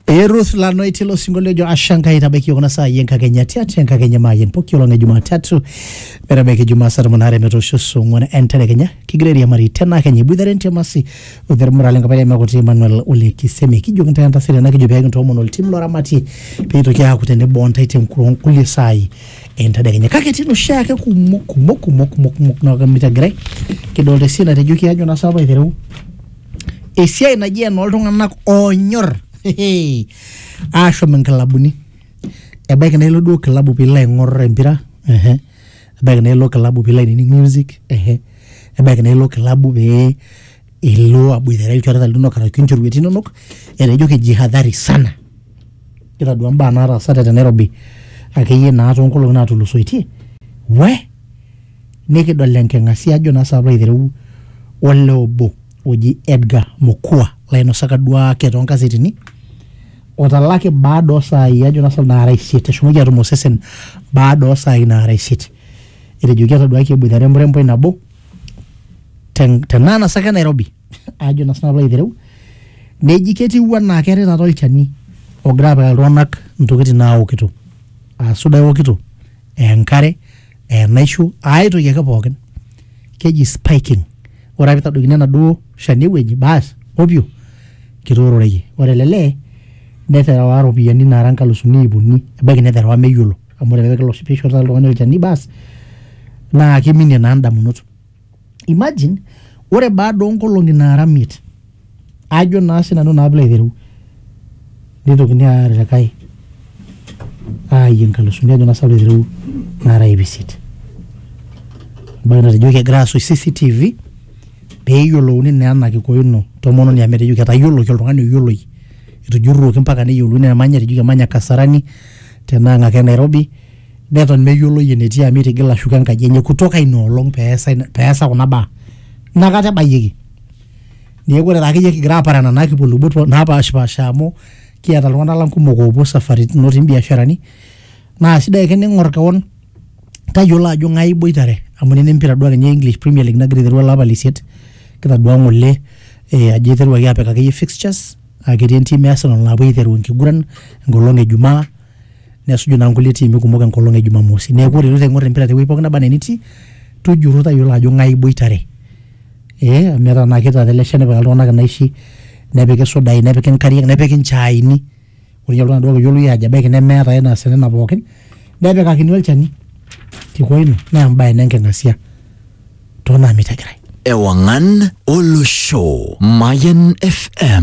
Ee Ruth Lanoi tilo sinkolio ojo asha Enkai tabaiki iyiook kuna saai enkakenya tiatua enkakenya maayen poki olong e Jumatatu metabaiki Jumaa saa tomon aare metoosho saa ong'wan entedekenya kigira airiamari tena kenya iboitare entiamasi olmurrani lenkapai Emekuti Emmanuel Ole Kisemi kijoki intae entasati tena kijo pee kintoomon oltim loramatie pee itoki aaku tenebo ontae tenkuo nkulie saai entedekenya kake etii noshiake kumok kumok kumok kumok kumok naaku mitegirai kidolta esiana natejoki ajo naa saapa aitereu esiai naji enooltung'anak oonyor hehe, aashom inkilabuni ebaiki naa ilo duo kilabu piilo aing'orr empira ehe, ebaiki naa ilo kilabu piilo ainining music ehe, ebaiki naa ilo kilabu pee ilo aboitare ilchoreta linonok arashu inchorueti inonok etaa ijo kijihadhari sana kitadua imbaa naataasate te Nairobi akeyie naa toonkolong'i naatulusoitie weh. nikidol enking'asia ajo naa saapa aitereu ole obo oji Edgar Mokua lainosaka duake toonkasetini otalaki baada osaai ajo naa saapa naara isiet eshomoki atum osesen baada osaai naara isiet etejoki etaduaki eboitare emuremboi nabo ten- tenaa nasaka e Nairobi ajo naa saapa aitereu neji ketiu anaa keetae taata olchani ogira apikaki iltung'anak intokitin naokito aa suda eokito aa enkare enaisho ae toki ake pookin keji spiking ore ake pitadokini enaduo shani ewueji baas opyo kitoororeyie ore ele lee neterewa iropiyiani naara nkalusuni iip uni ebaiki neterewa meyiolo amu ore ake piilo- piishori taata oltung'ani olchani baas naa kiminie naa indamunot. imagine ore baada oonkolong'i naara miet ajo naa sinanu naa pilo aitereu nitokini aaya likae aayie nkalusuni ajo naa sinanu pilo aitereu naara iip isiet ebaiki natejoki egirae aasuj CCTV peyiolouni naa ena kiko ino tomononi amu etejoki etayioloki oltung'ani oyioloi etujurruoki mpaka neyiolouni enemanya etejoki emanya Kasarani tenaa ng'ake Nairobi. neton meyioloi enetii amu itigila ashuko enkaji enye kutoka ina olong peesa ina- peesa kuna baa inakata ebayieki neeku ore akeyie kigira apara nena kipuo lubot po- napashipasha amu kiata iltung'anak lang kumok oopuo isafaritin otii imbiasharani naa sidai ake ning'or kewon tayiolo ajo ng'ae iboitare amu nena empira duo akenye e English premier league nagira aiteru olapa leisiet kitadua ng'ole eh, ajo eiteruaki apik akeyie fixtures aketii entim e Arsenal napuo aiteru enkiguran enkolong e jumaa nesuju naa nkulie tiimi kumok enkolong e Jumamosi. Neeku ore iloito aing'or empira tewueji pooki naba enaa enitii, tujurro tayiolo ajo ng'ae iboitare. Ee amu etaa naa ketii taata ele shani nepikaki iltung'anak inaishi, nepiki isudai, nepiki nkariak, nepiki nchaaini. Ore ninye oltung'ani duo oyioloi aajo ebaiki nemeeta ae naasita nena pookin, nepikakini olchani. Kiko ina naa embae ina enking'asia too naamitagirae. Ewang'an olosho, Mayian FM.